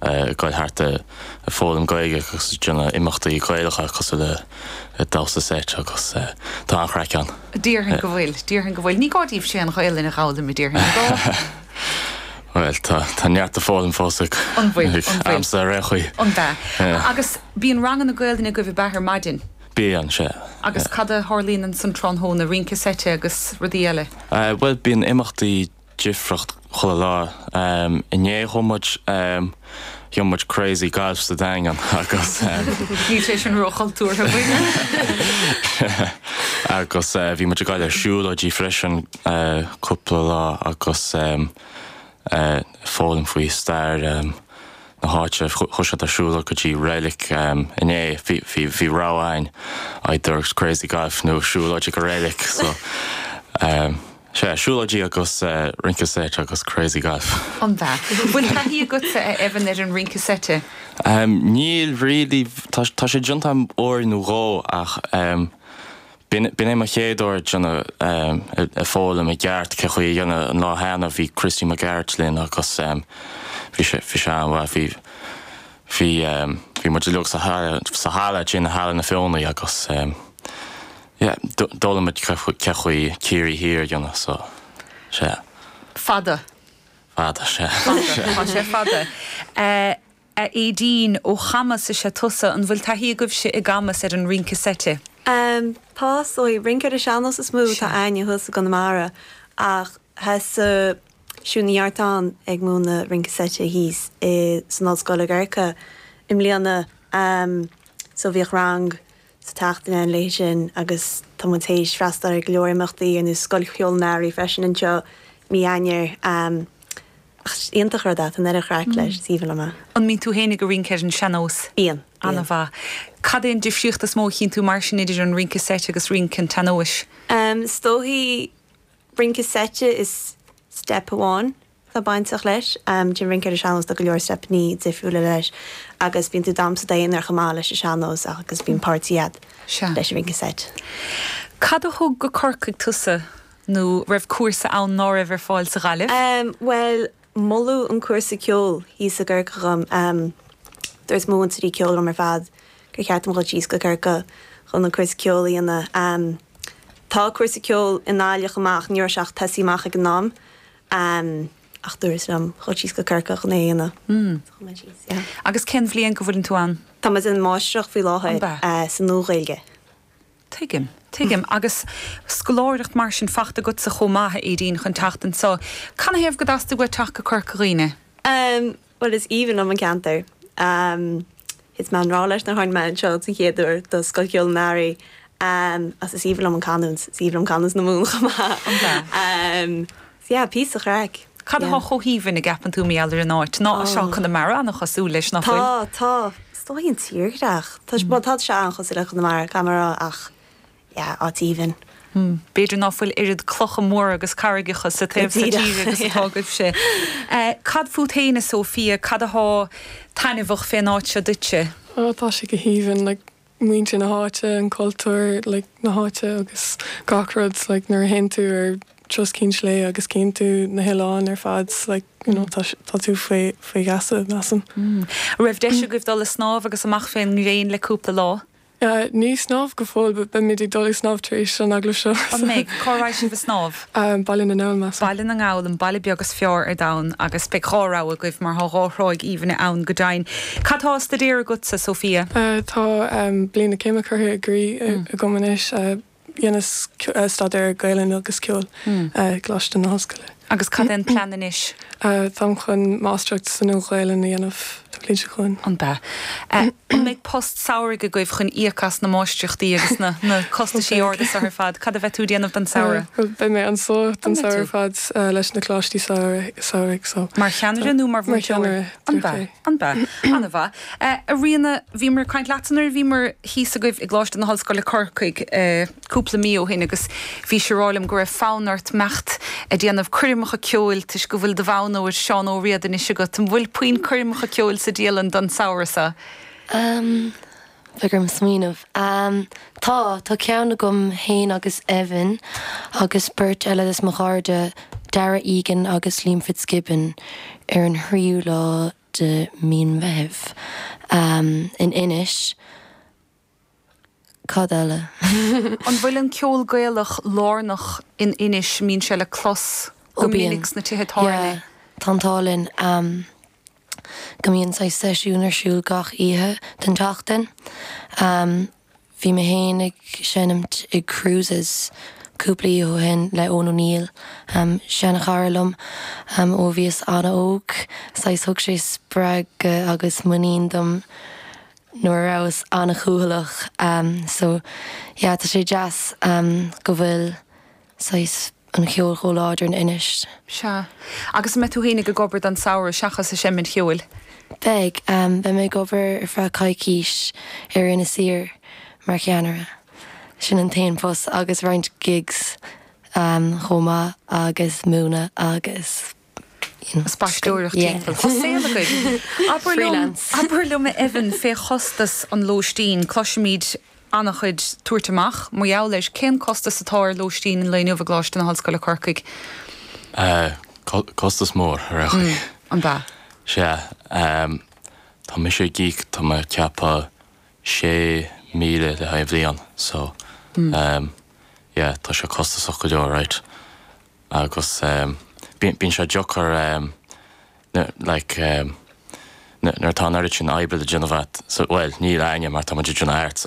ag dul thart ag foghlaim Gaeilge agus ag déanamh imeachtaí Gaelacha cosúil le damhsa seit agus tá an-chraic ann. Déarfainn go bhfuil, déarfainn go bhfuil. Ní gá daoibh siúd an Ghaolainn a dh'fhoghlaim, a déarfainn, ar ndó'? Bhuel, tá, tá neart le foghlaim fós againn, An bhfuil, ag an bhfuil. aimsir ar aon chaoi. An b'ea? Yeah. Agus bíonn ranganna Gaolainne agaibh ag baile ar maidin? Bíonn, sea. Agus cad a tharlaíonn ansan tráthnóna, rince seite agus rudaí eile? Eh, bhuel bíonn imeachtaí. difríocht chuile lá. Inné chuaigh muid, chuaigh muid crazy golf sa Daingean agus, Níl sé sin róchultúrtha faoina. agus bhí muid ag gabháil ar siúlóidí freisin cúpla lá agus foghlaim faoi stair na háite. Chuaigh siad ag siúl go dtí reilig inné. Bhí, bhí, bhí rogha againn either crazy golf nó siúlóid go reilig so. Sea, siúlóidí agus rince seit agus crazy golf. An-bhreá. Bhfuil taithí agatsa, a Evan, ar an rince seite? Níl really. Tá sé déanta agam uair nó dhó ach b'in é mo chéad uair ag déanamh, ag foghlaim i gceart cén chaoi é a dhéanamh. An lá cheana bhí Christy Mac Gearailt linn agus bhí sé, bhí sé an-mhaith. Bhí, bhí, bhí muid uilig sa halla, sa halla, i Halla na Feothanaí agus. Yeah, d'fhoghlaim muid cén chaoi Ciarraí Thiar a dhéanamh, so, sea. Fada. Fada, sea. Fada, tá sé fada. A Aedín, ó Chamus is ea tusa, an bhfuil taithí agaibhse i gCamus ar an rince seite? Tá, só is é rince ar an sean-nós is mó atá againne thuas i gConamara ach bhí Siún Ní Artáin ag múineadh rince seite thíos i, san Ollscoil i gCorcaigh i mbliana, so bhíodh rang sa tseachtain againn léithi sin agus tá muid tar éis freastal ar go leor imeachtaí ar nós Scoil Cheoil an Earraigh freisin anseo mí Eanáir ach is iontach an rud é, tá an oiread craic leis, is aoibhinn liom amach é. An mbíonn tú féinig ag rince ar an seannós? Bíonn, bíonn. An-mhaith. Cad é an difríocht is mó a chíonn tú mar sin idir an rince seite agus rince an tseannóis? Is dóigh rince seite is step amháin atá bainteach leis. Leis an rince ar an sean-nós tá go leor steipeanna difriúla leis agus bíonn tú ag damhsa i d'aonar chomh maith leis an sean-nós agus bíonn páirtí agat leis an rince seit. Cad a thug go Corcaigh tusa nó an raibh cúrsa ann ná raibh ar fáil sa nGaillimh? Bhuel, moladh an cúrsa ceoil thíos i gCorcaigh dhom. Dúirt mo mhúinteoirí ceoil dhom ar fad gur cheart dom dhul síos go Corcaigh chun an cúrsa ceoil a dhéanamh. Tá cúrsa ceoil i nGaillimh ach ní raibh sé ach tosaithe amach ag an am. ann, ach dúradh liom dhul síos go Corcaigh. So chuaigh mé síos, yeah. Agus cén bhliain go bhfuileann tú ann? Tá mé ag déanamh máistreacht faoi láthair sa Nua-Ghaeilge. Tuigim, tuigim. Agus scoláireacht mar sin faighte agatsa chomh maith, a Aideen, chun teacht anseo. Canathaobh gur theastaigh uait teacht go Corca Dhuibhne? Bhuel, is aoibhinn liom an ceantar. Thit mé i ngrá leis an áit nuair a thána anseo don chéad uair do Scoil Cheoil an Earraigh agus is aoibhinn liom an canúint. Is aoibhinn liom canúint na Mumhan chomh maith. An ea? So yeah, píosa craic. Cad atá chomh haoibhinn a gceapann tú i dtaobh na háite? Nó is ó Chonamara an-chosúil leis, nach bhfuil? Tá, tá. Is dóigh an tírdhreach. Tá, bhuel, tá sé an-chosúil le Conamara, Conamara ach yeah, áit aoibhinn. mm. b'fhéidir ná fuil oiread clocha móra agus carraigeacha sa taobh seo tíre agus atá agaibhse. Cad fút féin, a Sophia, cad atá taitneamhach fén áit seo duitse? oh, tá sé go haoibhinn, like muintir na háite, an cultúr like na háite agus gach rud like nuair a théann tú ar thuras Cheann Sléibhe agus cíonn tú na hoileáin ar fad like you know tá sé- tá tú faoi faoi gheasa measaim. An raibh deis agaibh dul a' snámh agus amach fén ngréin le cúpla lá? Sea, ní ag snámh go fóill, but beimid ag dul ag snámh tar éis an agallaimh seo. An mbeidh? Cá raghaidh sibh ag snámh? Baile na nGall, measaim. Baile na nGall, an baile beag is fearr ar domhan, agus beidh dhá rogha agaibh, mar tá dhá thráigh aoibhinne ann go deimhin. Cad tá á staidéar agatsa, Sophia? Tá bliain na céime curtha i gcrích agam anois. Dheineas staidéar Gaelainne agus Ceoil i gColáiste na hOllscoile. Agus cad é an plean anois? Táim chun Máistreacht sa Nua-Ghaelainn a dhéanamh an bhliain seo chugainn. Ab ea. An mbeidh post samhraidh agaibh chun íoc as na máistreachtaí agus na costaisí arda seo ar fad? Cad a bheidh tú ag déanamh don samhradh? Bhuel, beidh mé anso don samhradh ar fad leis na coláistí samhraidh so. Mar cheannaire nó mar mhúinteoir? Mar cheannaire, déarfainn. Ab ea. Ab ea? Ana mhaith. A Ríona, bhíomar ag caint leatsa nuair a bhíomar thíos agaibh i gColáiste na hOllscoile Corcaigh cúpla mí ó shin agus bhís á rá liom go raibh fonn ort imeacht ag déanamh coirmeacha ceoil toisc go bhfuil do bhonn óir Seán Ó Riada anois agat. An bhfuil puinn coirmeacha ceoil sa dialann don samhradh seo? Bheadh orm smaoineamh. Tá, tá ceann agam fhéin agus Evan agus beirt eile des mo chairde, Darragh Egan agus Liam Fitzgibbon ar an thríú lá de Mhí an Mheithimh in Inis. Cad eile? An bhfuil an ceol Gaelach lárnach in Inis, mbíonn sé le clos go minic sna tithe tábhairne? Ó bíonn, yeah, tá an t-ádh linn. go mbíonn saghas seisiún ar siúl gach oíche den tseachtain. Bhí mé féin ag seinm i gCruises cúpla oíche ó shin le Eoin O'Neill, seanchara liom ó bhíos an-óg, saghas thug sé spreagadh agus muinín dom nuair a rabhas an-chúthaileach. So yeah, tá sé deas go bhfuil saghas an ceol chomh láidir in Inis. Sea. Agus an mbeidh tú fhéinig ag obair don samhradh, seachas ag seimint cheoil? Beidh. Beidh mé ag obair ar feadh coicís ar Inis Oírr mar cheannaire. Sin an t-aon phost agus roinnt gigs chomh maith agus múineadh agus. spaisteoireacht timpeall. Tá saol againn. Abair liom a Evan, cén costas an lóistín, cloisimid an-chuid tabhairt amach mar gheall air. Cén costas atá ar lóistín an lae inniu i gColáiste na hOllscoile Corcaigh? Costas mór, ar aon chaoi. An ea? Sea. Tá mise ag íoc, tá mé ag ceapadh, sé míle le haghaidh an bhliain so yeah tá sé costasach go leor, raight. agus bíonn sé deacair, like, nuair atá an oiread sin oibre le déanamh agat, bhuel, níl againne, mar tá muid ag déanamh arts.